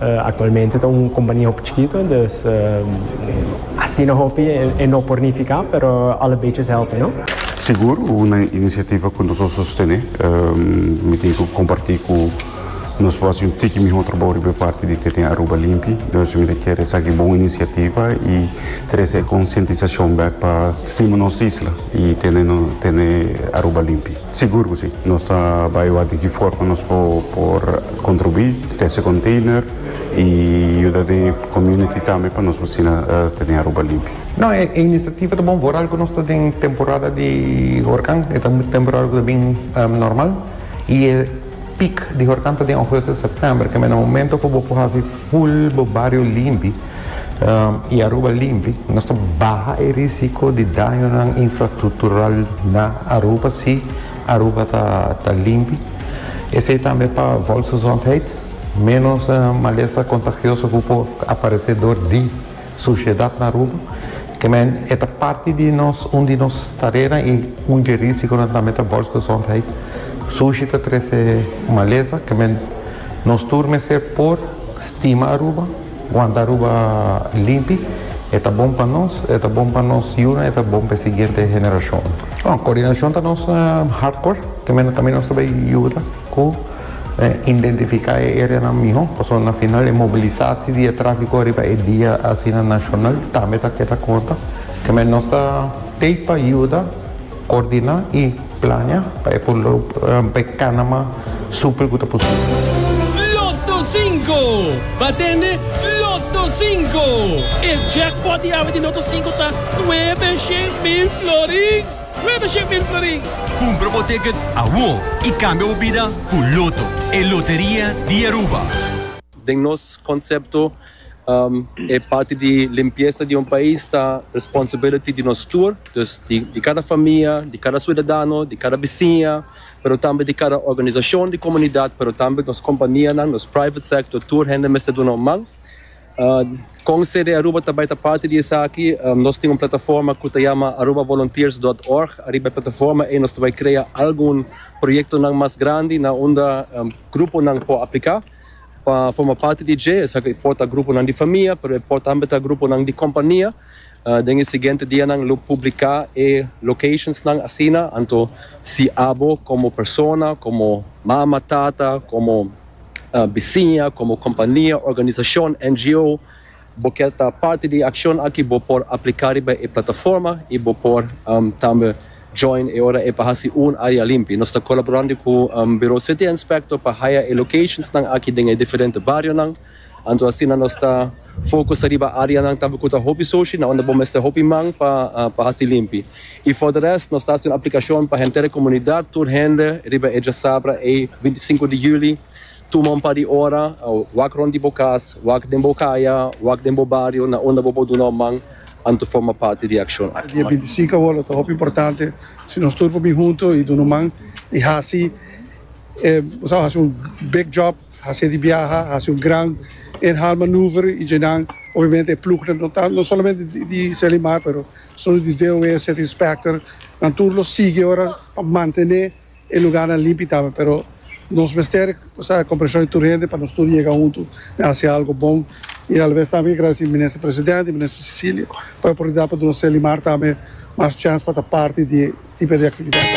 Actualmente ta un compania hopi chikito, dus asina hopi e no por nifica, pero alle beetjes helpen no. Sigur, una iniciativa cu nos a sostene. Mi tin cu comparti cu nos por haci un tiki miho trabao riba e parti di tene Aruba limpi. Entonces mi ta kier esaki e bon iniciativa y trece e concientisacion bek pa stima nos isla y tene Aruba limpi. Sigur cu si. Nos ta bay wak di ki forma nos por contribui cu ese container y yuda den e community tambe pa nos bocina tene Aruba limpio. No, e iniciativa ta bon for al cu nos ta den temporada di huracan, e ta un temporada cu ta bin normal y e. Piek di horkanta den August en September ke men a momento ku bo por hasi full bo bario limpi i Aruba limpi. Nos ta baha e risiko di dañonan infrastructural na Aruba si Aruba ta limpi. Esei tambe pa volksgezondheid. Menos malesa contagioso ku por aparese dor di. Sushiedat na Aruba, kemen e ta parti di nos un di nos tarenan i un di e risikonan tambe ta volksgezondheid. Sushi ta trese malesa, kemen nos tur mester por stima Aruba, wanta Aruba limpi, e ta bon pa nos, e ta bon pa nos yunan, e ta bon pa e siguiente generashonnan. Kordinashon ta nos hardcore, kemen tambe nos ta bai yuda ku. Identifica e areanan miho, pasobra na final e mobilisaci di e trafico riba e dia asina nacional tambe ta keda conta. Keme nos ta tey pa yuda coordina y plania pa e por lo pa e canama super cu ta posible. Lotto Cinco! Bo a tende? Lotto Cinco! E jackpot di awe di Lotto Cinco ta nuebe shen mil florin! Greater Shipment Florin. Cumpra bo ticket awor y cambia bo bida cu Lotto, e loteria di Aruba. Den nos concepto, e parti di limpieza di un pais ta responsibility di nos tur, dus di cada famia, di cada ciudadano, di cada bisiña, pero tambe di cada organisacion di comunidad, pero tambe nos companianan, nos private sector, tur hende mester duna un man. Con CD Aruba ta bay ta parti di esaki, nos tin un plataforma cu ta yama arubavolunteers.org. Ariba e plataforma ey nos ta bay crea algun proyectonan mas grandi na unda gruponan por aplica pa forma parti di dje. Esaki e por ta gruponan di famia, pero e por tambe ta gruponan di compania. Den e siguiente dianan lo publica e locationsnan asina. Anto si abo como persona, como mama, tata, como. bisiña, komo kompania, organisashon, NGO, bo kier ta parti di e akshon aki bo por apliká riba e plataforma i bo por tambe join e ora e pa hasi un área limpi. Nos ta kolaborando ku Buro City Inspector pa haya e lokashonsnan aki den e diferente barionan. Anto asina nos ta focus riba areanan tambe cu ta hopi soshi na unda bo mester hopi man pa pa haci limpi. Y for de rest nos ta haci un aplicacion pa henter e comunidad, tur hende riba e diasabra ey binti sinku di juli, tuma un par di ora, wak rond di bo cas, wak den bo caya, wak den bo bario na unda bo por duna un man anto forma parti di e accion aki. Dia binti sinku awor lo ta hopi importante si nos tur por bin hunto y duna un man y haci, bo sa haci un big job. Hasi di biaha, hasi un gran inhaalmanoeuvre y dje nan obviamente e ploegnan no ta, no solamente di Selimar pero solo di DOE, City Inspector, nan tur lo sigui ora pa mantene e lugarnan limpi tambe pero nos mester esa comprension di tur hende pa nos tur yega huntu den hasi algo bon y alabes tambe agradeci Minister President y Minister Cecilia pa e oportunidad pa duna Selimar tambe mas chance pa ta parti di e tipo di actividadnan.